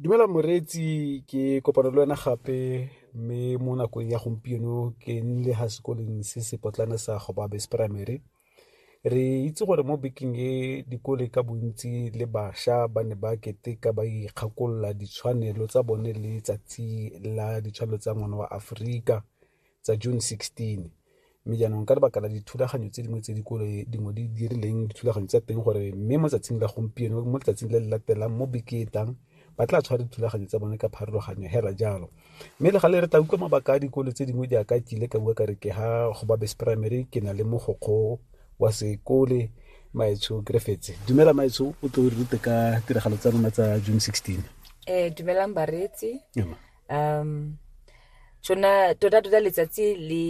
Dumela moreetsi ke kopana le wena gape mme mo nakong ya gompieno ke nnile ga sekoleng se se potlana sa gobabes primary re itse gore mo bekeng e dikole ka bontsi le bašwa ba ne ba keteka ba ikgakolola ditshwanelo tsa bone le tsatsi la ditshwanelo tsa ngwana wa aforika tsa June 16 mme jaanong ka lebaka la dithulaganyo tse dingwe tse dikolo dingwe di dirileng dithulaganyo tsa teng gore mme mo tsatsing la gompieno mo letsatsing le le latelang mo beketang ba tla tshwara dithulaganyo tsa bone ka pharologanyo hela jalo mme le gale re tla utlwa mabaka a dikolo tse dingwe jaaka ke ile ka bua ka re ke ha go babes primary ke na le mogokgo wa sekole maetsho griffits dumela maetsho o tlo re rute ka tiragalo tsa rona tsa june 16 eh dumelang bareetsi um tsona tota tota letsatsi le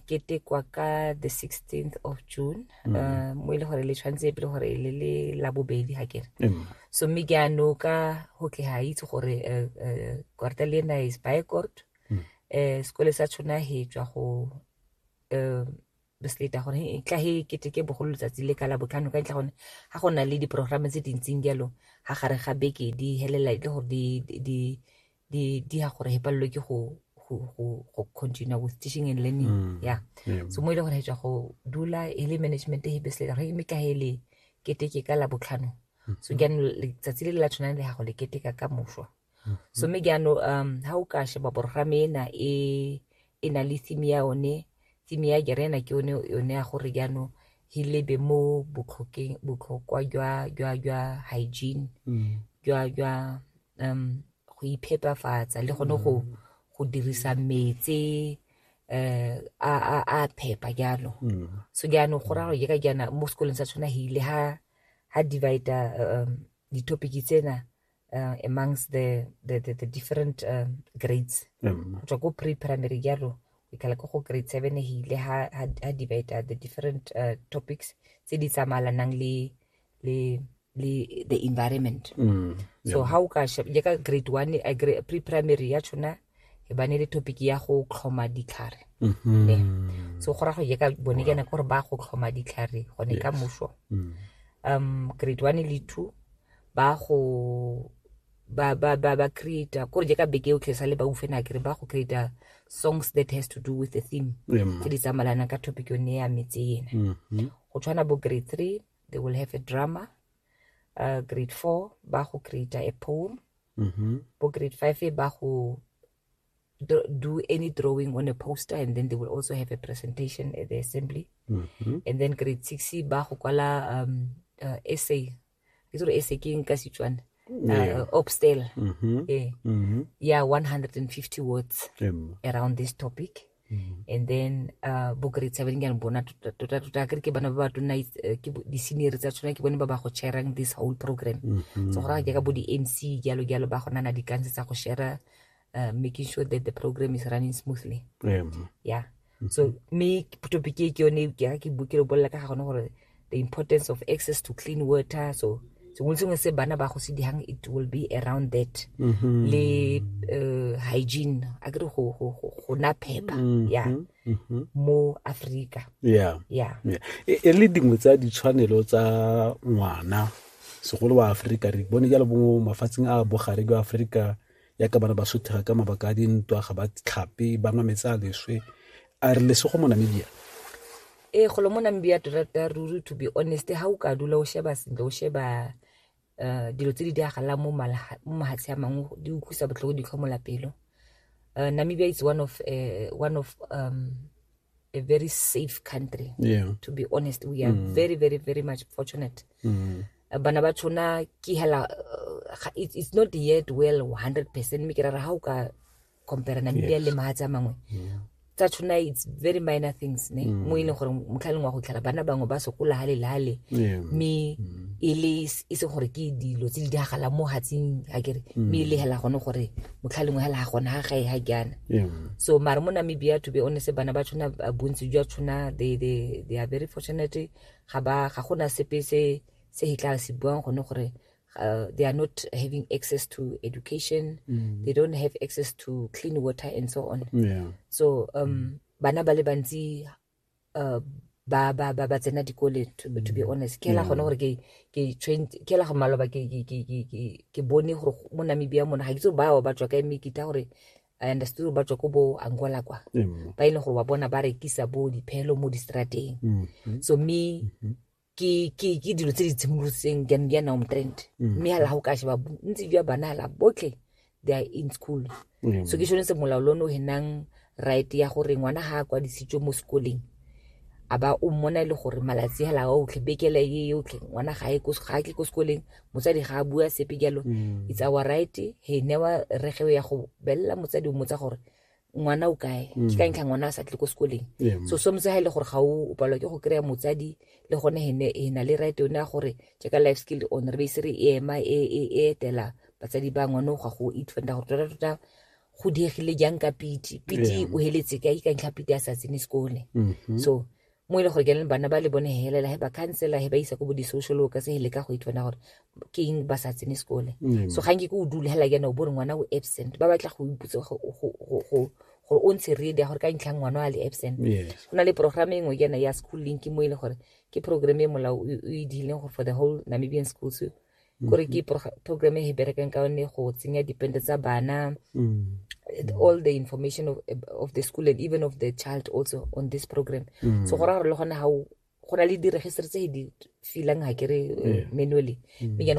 ketekwa ka the 16th of june mm. uh, mo e le gore le tshwanetse pele gore le le la bobedi ga kere mm. so mme ke ano ka go ke ga itse gore uh, uh, korta le ena is by court mm. uh, sekole sa tshona he tswa go uh, bus later gore e tla he keteke bogolo letsatsi le ka la botlhano ka ntlha gone ga go na le diprogramme tse dintseng jalo ga gare ga beke di helela le gore di ya gore he palelwe ke go continue with teaching and learning mm, ya so mo e le gore he tswa go dula e le management he bus later gore mme ka he le keteke ka la botlhano mm-hmm. so jaanong letsatsi le le la tshwanang le gago le keteka ka moswa mhm. so mme jaanong um ha o ka sheba borogame ena e e na le theme ya one theme ya jerena ke one yone ya gore jaanong he lebe mo botlhokeng botlhokwa jwa jwa jwa hygiene mm. jwa jwa um go iphepafatsa le gone go mm. go dirisa metsi eh a a a phepa jalo mm. so jaanong go raro je ka jana mo sekolong sa tshwana hile ha ha divider um di-topic tsena uh, amongst the, the, the, the different uh, grades go tswa ko pre-primary jalo ikala ko go grade seven e hile ha, ha, ha debate uh, the different uh, topics tse di tsamalanang le le le the environment mm. so yeah. how ka je ka grade one a grade, pre-primary ya tshona e bane le topic ya go tlhoma ditlhare mm -hmm. ne so go ra go ye ka bone kana gore ba go tlhoma ditlhare gone yes. ka moso mm. um grade one le two ba go ba ba ba ba create ko re je ka beke yotlhe sa le ba ufe na kere ba go create songs that has to do with the theme tse di tsamalanang ka topic yone ya metse ena mm-hmm. go tshwana bo grade three they will have a drama uh, grade four ba go create a poem mm-hmm. bo grade five ba go do any drawing on a poster and then they will also have a presentation at the assembly mm-hmm. and then grade six ba go kwala um, uh, essay e tsere e se ke nka setswana yeah. uh, obstel mm -hmm. eh. mm -hmm. yeah 150 words mm. around this topic mm -hmm. and then uh, bo grade seven ke bona tota tota ke ke bana ba ba tona eh, ke di senior tsa tsona ke bone ba ba go sharing this whole program mm -hmm. so go ra ke ka bo di MC jalo jalo ba gona na di kanse tsa go share uh, making sure that the program is running smoothly yeah, yeah. Mm-hmm. so me topic e ke yone e ke ke bukile o bolela ka ga gone gore the importance of access to clean water so sengwe sengwe se bana ba go se dihang it will be around that mm -hmm. le uh, hygiene a kere go go go na phepa mm-hmm. ya mm -hmm. mo Africa yeah yeah e, e le dingwe tsa ditshwanelo tsa ngwana segolo wa Africa re bone jalo bo mafatsheng a bogare jwa Africa yaka ba re ba sothega ka mabaka a dintwa ga ba tlhape ba nwa metsi a leswe a re lesego mo namibia ee golo mo namibia tota ruri to be honest ga o ka dula o sheba sentle o sheba um dilo tse di diragalang mo mahatshe a mangwe di utlwisa botlhoko di tlhomola pelo um namibia is one of uh, one of um a very safe country yeah. to be honest we are mm. very very very much fortunate mm. Eh, bana ba tshona ke hela eh, it's not yet well 100 percent mme ke rara ga o ka compare namibia le maga tsa mangwe tsa tshona it's very minor things ne mm. mo e leng gore motlhaleng wa go tlhela bana bangwe ba sokola ga lelale mme mm. e le e se gore ke dilo tse di diragalang mo gatsing a kere mm. mme e legela gone gore motlhalengwe ga la gona ga gae ga jaana so mare mo namibia to be honest bana ba tshwana bontsi jwa tshwana they, they, they are very fortunate ga ba ga gona sepe se se e tla se buang gone gore uh, they are not having access to education mm. they don't have access to clean water and so on yeah. so um, mm. bana ba le bantsi uh, ba ba ba ba tsena dikole to, to be honest ke la gone gore ke ke trained ke la go maloba ke ke ke ke ke ke bone gore mo Namibia mona ga ke tso ba ba tswa ka me kita gore I understood ba tswa ko bo Angola kwa ba ile gore wa bona ba rekisa bo diphelo mo distrateng so me ke ke ke dilo tse di tshimolotseng di a nna omtrend mm. mme ga la go ka sheba bontsi jwa bana la botlhe they are in school mm. so ke sone se molao lo no henang right ya gore ngwana ga a kwadisitswe mo sekoleng a ba o mmona e le gore malatsi hela a otlhe bekele e yotlhe ngwana ga e ga ke ko sekoleng motsadi ga a bua sepe jalo mm. it's our right he newa regeo ya go belela motsadi o motsa gore ngwana o kae mm. ke ka ntlha ngwana a sa tle ko sekoleng so sometse ga e le gore ga o palwa ke go kry-a motsadi le gone ene e na le right yone ya gore jaaka life skill on re beise re e ema e, e, e etela batsadi ba ngwane o ga go itfenda gore tota tota go diegile jang ka piti piti o heletse ka ikantlha piti a sa tsene sekole mm-hmm. so mo e le gore ke leng bana ba le bone helela he ba khansela he ba isa ko bo di-social workers he leka go itwana gore ke eng ba sa tsene sekole mm. so ga nke ko o dule hela kena o bore ngwana o absent ba batla go iputse gore o ntshe ready ya gore ka ntlhang ngwana a le absent go na le programme engwe kena ya school link mo e le gore ke programme e molao o e diileng gore for the whole namibian schools gore ke program e berekang ka one go tsenya dipente tsa bana mm. all the information of, of the school and even of the child also on this program mm. so go raya gore le gone ga go na le diregistre tse di filang ga kere eh, manually mm. mme jane